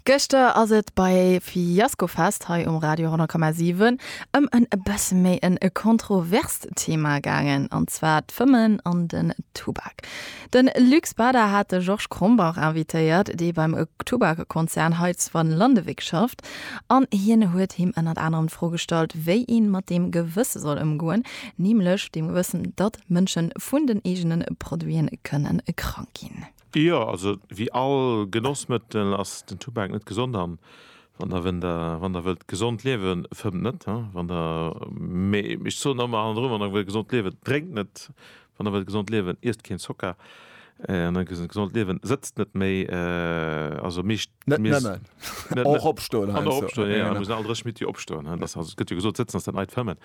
Gëschter ass et bei Fiascofest hei um Radio 10,7 ëm en e bësse méi en e kontroverst Thema gaangen, an zwar d'Fëmmen an den Tubak. De Luc Bader hat de Georges Krombach invitéiert, dee beim Tubakkonzern hei zu Vanlondewijk schafft, an hien huet him ënnert anerem d'Fro gestallt, wéi ee mat deem Gewësse soll ëmgoen, nämlech deem Gewëssen, datt Mënsche vun den eegene Produite kënne krank ginn. Jo, also wéi all Genossmëttel ass den Tubak net gesond an wann der wënn der wann der wëllt gesond liewen, fëmmt net, hein, wann der mee ech soen ëmmer hannendrun, wann der wëllt gesond liewen, drénkt net, wann der wëllt gesond liewen, iesst keen Zocker, wann der wëllt gesond liewen, sëtzt net méi, also meescht Net nëmmen, och opstoen heiansdo. An och opstoen, jo, jo, mir sinn all dräi Schmittie, opstoen, hein, dass, also et gëtt jo gesot, sëtzen ass dat neit Fëmmen.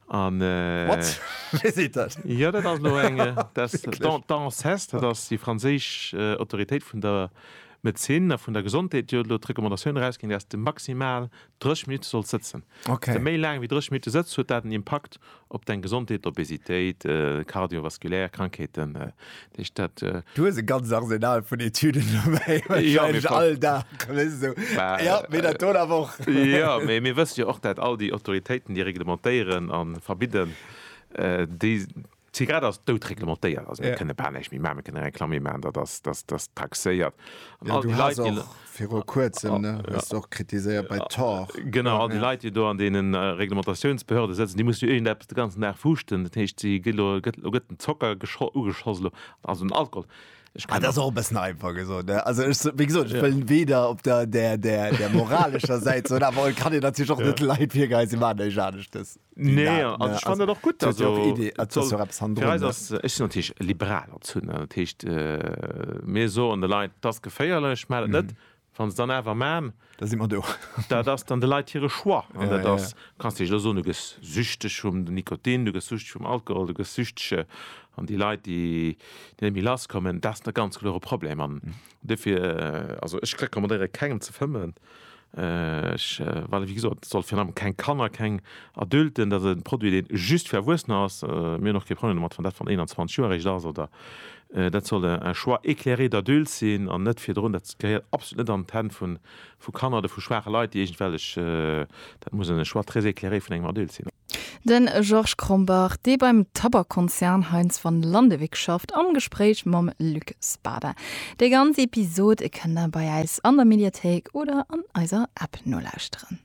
What? Wéi seet dat? Jo, dat ass elo eng, das, d'ANSES, dat ass déi franséisch Autoritéit vun der Medezin a vun der Gesondheet, déi huet elo d'Recommandatioun erausginn, dass de maximal 30 Minutte solls sëtzen. Wann de méi laang wéi 30 Minutte sëtzt, huet dat en Impakt op deng Gesondheet, Obesitéit, kardiovaskulär Krankheeten, Dich dat, äh, Du hues e ganzt Arsenal vun Etüden dobäi, wahrscheinlech ja, all Dag. So. Bah, ja, mir dat do awer och. Ja, mee mir wësse jo och, dat all déi Autoritéiten, déi reglementéieren a verbidden, äh, déi. D'Zigarett ass doutreglementéiert. Also mir ja. kënne bal näischt méi maachen. Mir kënne Reklamm méi maachen, datt ass, datt ass taxéiert. An ja, all déi Leit, déi. Viru kuerzem, ne, hues de och kritiséiert bei Tor. Genau, all déi Leit, déi do an deene Reglementatiounsbehörde sëtzen, déi mussen jo iergendeppes de ganzen Dag fuuschten. Dat heescht, si ginn elo, gëtt, elo gëtt den Zocker gescho, ugeschoss elo, also den Alkohol. Ech kann. Ah, dat ass och e bëssen einfach gesot, ne? Also ech, wéi gesot, ech wëll weder op der, der, der, der moralescher Säit soen, awer et kann een natierlech och net de Leit virgeheien, si maachen näischt aneschtes. Nee, also ne? ich fand also, dat och gutt also, ja och Idee, et soll, soll fir eis ass ech sinn natierlech liberal als hunn dat heescht äh, mir soen de Leit dass geféierlech mä dat net mhm. wann se dann awer man da si man do dat ass dann de Leit hire Choix an ja, dat ass ja. kannst dech lo so du gëss süchteg vum de Nikotin du gëss süchteg vum Alkohol du gëss süchtege an déi Leit déi déi mi lass kommen dat der ganz klore Problem an mhm. Dofir, also ech recommandéiere kengem ze fëmmen, ech, well wéi gesot, et soll virun allem keng Kanner, keng Adulten, dat ass e Produit deen just fir Erwuessener ass, mir hunn och kee Problem domat wann dat wann 21 Joer eréischt ass oder, dat soll un choix éclairé d'adultes sinn an net virdrun, dat gehéiert absolut net an d'Hänn vun. Vu Kanner oder vu schwaache Leit, déi iergendwellech, dat muss en Choix très éclairé vun engem Adulte sinn. De Georges Krombach, dee beim Tabakkonzern Heinz Van Landewyck schafft, am Gespréich mam Luc Spada. Déi ganz Episod kënnt der bei äis an der Mediathéik oder an eiser App nolauschteren.